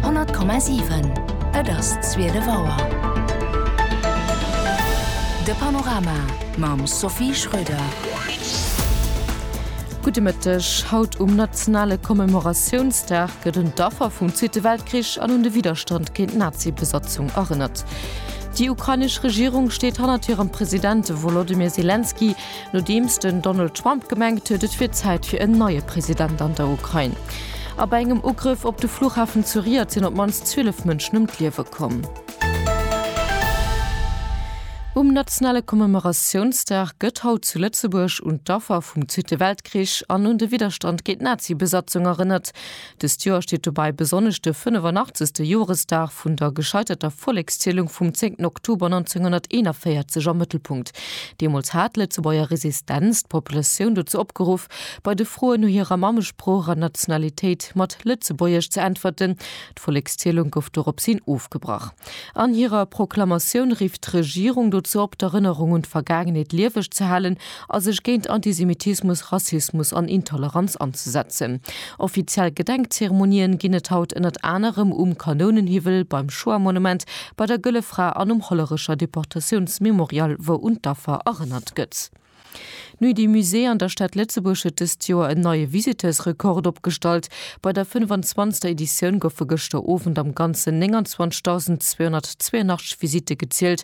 100,7 Et ass zwielef Auer. De Panorama mam Sophie Schröder. Gudde Mëtteg. Haut um nationale Commemoratiounsdag gëtt un d'Affer vum Zweete Weltkrich an un de Widderstand géint d'Nazi-Besatzung erënnert. Déi ukrainesch Regierung steet hannert hirem President Wolodymyr Selenskyj, nodeems den Donald Trump gemengt huet, et wier Zäit fir en neie President an der Ukrain. A bei engem Ugrëff op de Fluchhafen zu Riyadh sinn op d'mannst 12 Mënschen ëm d'Liewe komm. Um nationale Commemoratiounsdag gëtt haut zu Lëtzebuerg un d'Affer vum Zweete Weltkrich an un de Widderstand géint d'Nazi-Besatzung erënnert. Dëst Joer steet dobäi besonnesch de 85. Joresdag vun der gescheiterter Vollekszielung vum 10 Oktober 1941 am Mëttelpunkt. Deemools hat d'Lëtzebuerger Resistenz d'Populatioun dozou opgeruff, bei de Froen no hirer Mammesprooch an Nationalitéit mat Lëtzebuergesch ze äntwerten. D'Vollekszielung gouf doropshin ofgebrach. An hirer Proklamatioun rifft d'Regierung dozou op, d'Erënnerung un d'Vergaangenheet lieweg ze halen a sech géint Antisemitismus, Rassismus an Intoleranz anzesetzen. Offiziell Gedenkzeremonien ginn et haut ënnert anerem um Kanounenhiwwel, beim Shoah-Monument, bei der Gëlle Fra an um Hollerecher Deportatiounsmemorial, wou un d'Affer erënnert gëtt. Nuit du Musée an der Stad Lëtzebuerg huet dëst Joer en neie Visiteursrekord opgestallt. Bei der 25. Editioun goufe gëschter Owend am Ganzen 29.282 Visitte gezielt.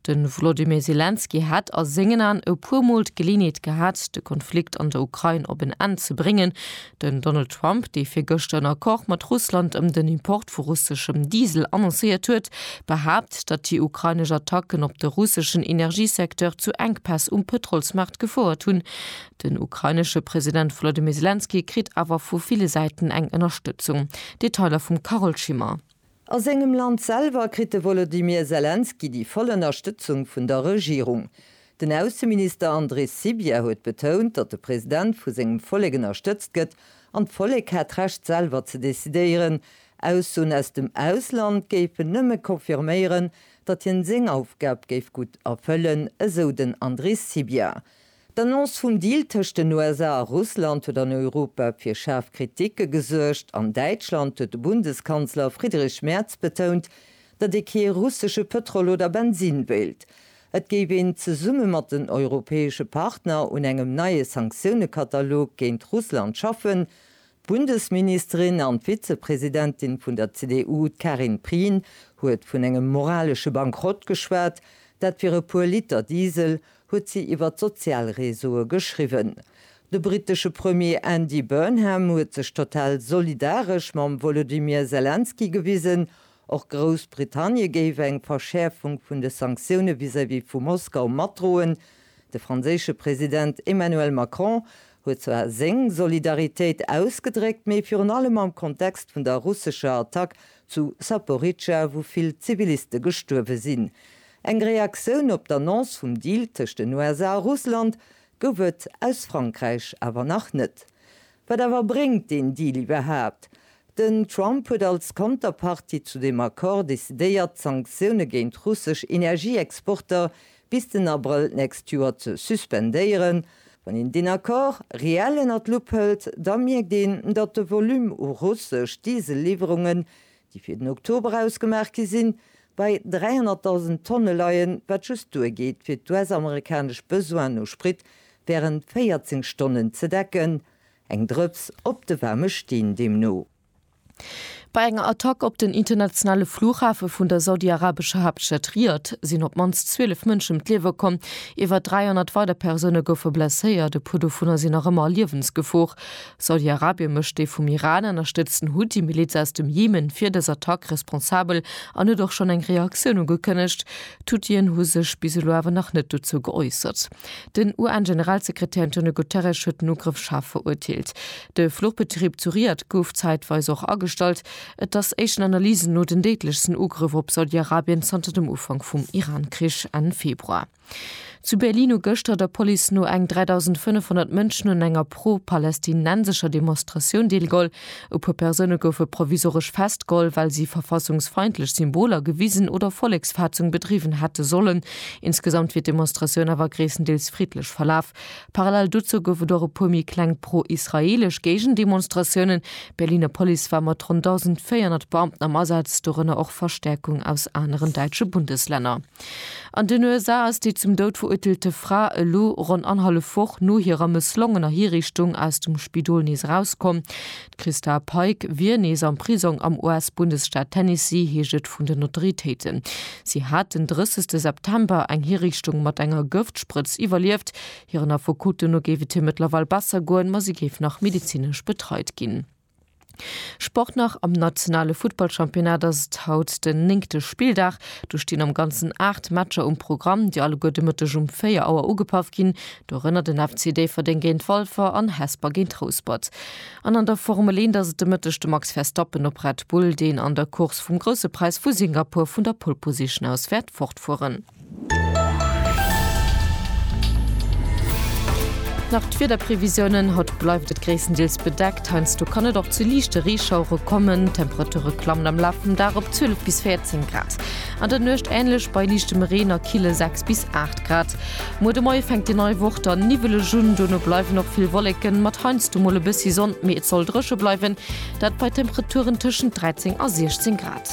De Volodymyr Selenskyj hätt a sengen Aen e puer Mol d'Geleeënheet gehat, de Konflikt an der Ukrain op en Enn ze bréngen. Den Donald Trump, dee virgëschter en Accord mat Russland ëm den Import vu russeschem Diesel annoncéiert huet, behaapt, datt déi ukrainesch Attacken op de russeschen Energiesecteur zu Enkpäss um Pëtrolsmaart gefouert hunn. Den ukrainesche President Volodymyr Selenskyj kritt awer vu ville Säiten eng Ënnerstëtzung. Detailer vum Carole Schimmer. A sengem Land selwer kritt de Wolodymyr Selenskyj déi voll Ënnerstëtzung vun der Regierung. Den Ausseminister Andris Sybiha huet betount, datt de President vu sengem Vollek ënnerstëtzt gëtt an d'Vollek hätt d'Recht selwer ze decidéieren. Aussoen aus dem Ausland géifen nëmme confirméieren, datt hien seng Aufgab géif gutt erfëllen, esou den Andris Sybiha. D'Annonce vum Deal tëscht den USA a Russland huet an Europa fir schaarf Kritike gesuergt. An Däitschland huet de Bundeskanzler Friedrich Merz betount, datt ee kee russesche Pëtrol oder Bensinn wéilt. Et géif een zesumme mat den europäesche Partner un engem neie Sanktiounen-Katalog géint Russland schaffen. D'Bundesministerin an d'Vizepresidentin vun der CDU, d'Karin Prien, huet vun engem moralesche Bankrott geschwat. Dat fir e puer Liter Diesel. huet si iwwer d'Sozialreseaue geschriwwen. De brittesche Premier Andy Burnham huet sech total solidaresch mam Wolodymyr Selenskyj gewisen. Och Groussbritannie géif eng Verschäerfung vun de Sanktioune vis-à-vis vu Moskau matdroen. De franséische President Emmanuel Macron huet zwar seng Solidaritéit ausgedréckt, mee virun allem am Kontext vun der russescher Attack zu Saporidscha, wou vill Ziviliste gestuerwe sinn. Eng Reaktioun op d'Annonce vum Deal tëscht den USA a Russland gouf et aus Frankräich awer nach net. Wat awer bréngt deen Deal iwwerhaapt? Den Trump huet als Konterpartie zu deem Accord decidéiert, d'Sanktioune géint russesch Energieexporter bis den Abrëll d'nächst Joer ze suspendéieren. Wann een deen Accord reell ënnert d'Lupp hëlt, da mierkt een, datt de Volume u russesch Diesel-Liwwerungen déi fir den Oktober ausgemaach gi sinn, bei 300.000 Tonne leien, wat just duergeet fir d'US-amerikanesch Besoinen u Sprit wärend 14 Stonnen ze decken. Eng Drëps op de waarme Steen deemno. Bei enger Attack op den internationale Flughafe vun der saudiarabescher Haaptstad Riad sinn op d'mannst 12 Mënsche ëm d'Liewe komm. Iwwer 300 weider Persoune goufe blesséiert, e puer dovunner sinn nach ëmmer a Liewensgefor. Saudi-Arabien mécht déi vum Iran ënnerstëtzten Huthi-Miliz aus dem Jemen fir dës Attack responsabel an huet och schonn eng Reaktioun ugekënnegt. D'Huthien hu sech bis elo awer nach net dozou geäussert. Den UN-Generalsekretär Antonio Guterres huet den Ugrëff schaarf verurteelt. De Fluchbetrib zu Riyadh gouf zäitweis och agestallt. Et ass éischten Analysen no den déidlechsten Ugrëff op Saudi-Arabien zanter dem Ufank vum Iran-Krich Enn Februar. Zu Berlin hu gëschter der Police no eng 3.500 Mënschen un enger pro-palästinensescher Demonstratioun deelgeholl. E puer Persoune goufe provisoresch festgeholl, well si verfassungsfeindlech Symboler gewisen oder Volleksfaatzung bedriwwen hätte sollen. Insgesamt wier d'Demonstratioun awer gréisstendeels friddlech verlaf. Parallel dozou gouf et och e puer méi kleng pro-israeelesch Géigendemonstratiounen. D'Berliner Police war mat ronn 1.400 Beamten am Asaz, dorënner och Verstäerkung aus aneren däitsche Bundeslänner. An den USA ass déi zum Doud verurteelte Fra elo ronn annerhallef Woch no hirer mësslongener Hiriichtung aus dem Spidol nees erauskomm. D'Christa Pike wier nees am Prisong am US-Bundesstaat Tennessee, heescht et vun den Autoritéiten. Si hat den 30 September eng Hiriichtung mat enger Gëftsprëtz iwwerlieft. Hiren Affekoten no géif et hir mëttlerweil besser goen, ma si géif nach medezinesch betreit ginn. Sport nach, Am nationale Futtballchampionnat ass et haut den néngte Spilldag. Do stinn am Ganzen 8 Matcher um Programm, déi alleguer de Mëtteg um 4 Auer ugepaff ginn. Dorënner den FC Déifferdeng géint Walfer an Hesper géint Rouspert. An an der Formel 1 ass et de Mëtteg de Max Verstappen op Red Bull, deen an der Course vum Grousse Präis vu Singapur vun der Pole Position aus wäert fortfueren. Nach d'Wiederprevisiounen, Haut bleift et gréisstendeels bedeckt, heiansdo kann et och zu liichte Reeschauere kommen. D'Temperature klammen am Laf vum Dag op 12 bis 14 Grad, an der Nuecht änlech bei liichtem Reen a kille 6 bis 8 Grad. Muer de Moie fänkt déi nei Woch dann niwweleg un, dono bleiwen och vill Wolleken, mat heiansdo mol e bëssi Sonn, mee et soll dréche bleiwen, dat bei Temperaturen tëschent 13 a 16 Grad.